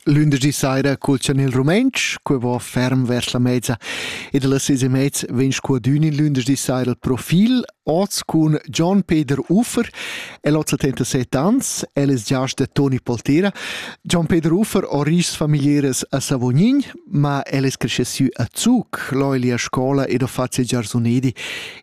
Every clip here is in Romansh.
Lündeschdi saira culchan il rumentsch, que va ferm vers la mezza ed las seis e mez vegn scuadün in lündeschdi saira il profil, oz cun Gian Peter Uffer, el ho 77 ans, el es giast da Toni Poltera. Gian Peter Uffer ho ris familiares a Savognin, ma el es cresce sü a Zug, l'ho el a scola ed ho fat ses giarsunedi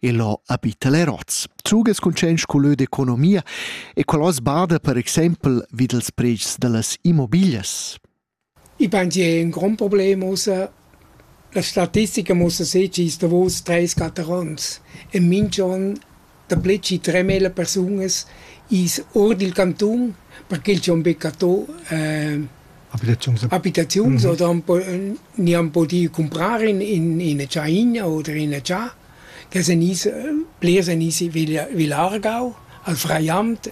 e l'ho abita le Roz. Zuges cuntschaints culö d'economia e qual hoz bada per exaimpel vi dels predschs da las immobiglias? Ich meine, die haben ein Grundproblem außer la statistica muss sê ci sta vos treis catarons. E minch'on da ple ci tremila persunas is or dil cantun perché il c'è un beccatò eh, Abitaziuns? Abitaziuns mhm. oder ni han pudì cumprar in, in, ina tschaina oder ina tscha che sen is, plirs en isi vilargau al Freiamt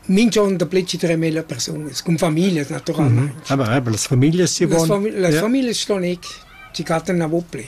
minch'on da pli tre mila persunas, con familias naturalmente. Mm -hmm. Aber, aber las familias si vogliono? Las ja. familias stanno ci cattano a vopli.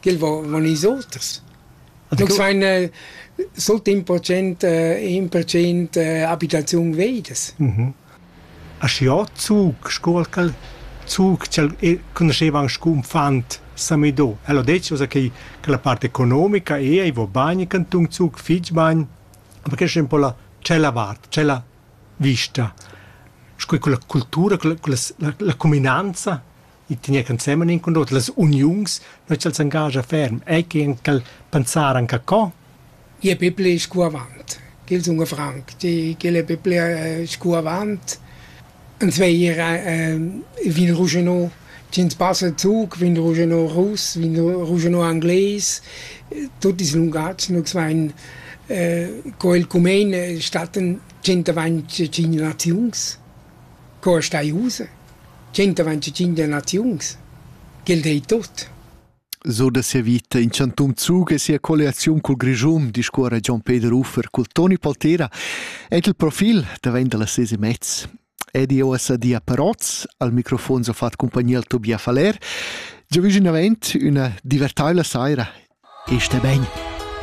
ch'el von ils oters. Nus vein eh, sut in procent, eh, in procent eh, abitaziun veidas. Mhm. Aschiò Zug, scuol cal Zug, che conosceva anche un fant Samido. Elo detto che, che la parte economica è, i vo bagni canton Zug, fig bagn, ma che è un po' la, c'è la vart, c'è la vista. Scuol quella cultura, quella, quella la, la cuminanza i tegna ensemen in cun l'oter las uniuns, nu ch'els engagia ferm, ei che en quel pensar anche co? Je Biblia ist gut avant. Gil sun Frank, die gile Biblia ist gut avant. En zweier äh, vin Rougenot, Jens passen Zug, vin Rougenot Russ, vin Rougenot Anglais, tutti i lungazzi, nu zwei äh, co il cumen statten 125 naziuns. Co stai ussa? Tschentavan tschintg naziuns? Quel dei tut. So da sia vita in chantun Zug e sia colliaziun cul Grischun, discuora Gian Peter Uffer cul Toni Poltera ed il profil davent da las ses e mez. Edi OSAD a Parotz, al microfon so fat compagnia al Tobias Faller. Già viginavent üna divertaivla saira. Este ben!